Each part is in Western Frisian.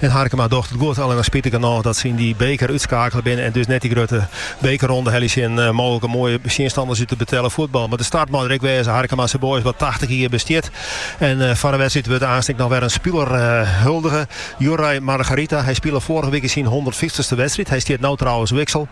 En Harkema docht it goed, allinne spitich genôch dat se yn dy beker útskakele binne en dus net dy grutte bekerronde helje sille. Mooglike moaie tsjinstanners út it betelle fuotbal, mar de start mei der ek wêze. Harkemase Boys wat tachtich jier bestiet en foar de wedstriid wurdt aanst ek noch wer in spiler huldige, Juraj Margarita. Hy spile foarige wike syn hûndertfyftichste wedstriid. Hy stiet no trouwens wiksel.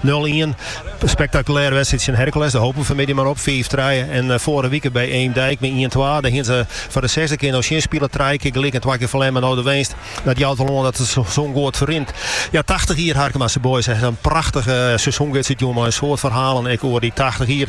Nul-ien. Spektakulêre wedstriid tsjin Hercules. Dêr hope we fanmiddei mar op. Fiif trije. En eh, foarige wike by Eemdijk mei ien-twa. Dêr hienen se foar de sechsde kear no tsjin spile. Trije kear gelyk en twa kear ferlern. En no de winst. Dat jout wol oan dat it seizoen goed ferrint. Ja, 80 jier Harkemase Boys. In prachtige eh, seizoengids útjûn mei in soad ferhalen ek oer dy 80 jier.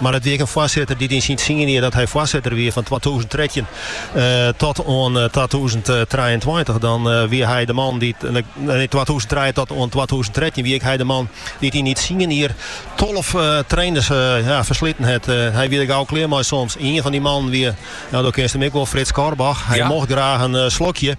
Mar it wie ek in foarsitter dy't yn syn tsien jier dat hy foarsitter wie, fan twatûzen trettjin tot oan twatûzen trijeentweintich, dan wie hy de man dy't, nee, twatûzen trije tot oan twatûzen trettjin wie ek hy de man dy't yn dy tsien jier tolve trainers fersliten hat. Hy wie der gau klear mei soms. Ien fan dy mannen wie, no do kinst him ek wol, Frits Korbach. Hy mocht graach in slokje.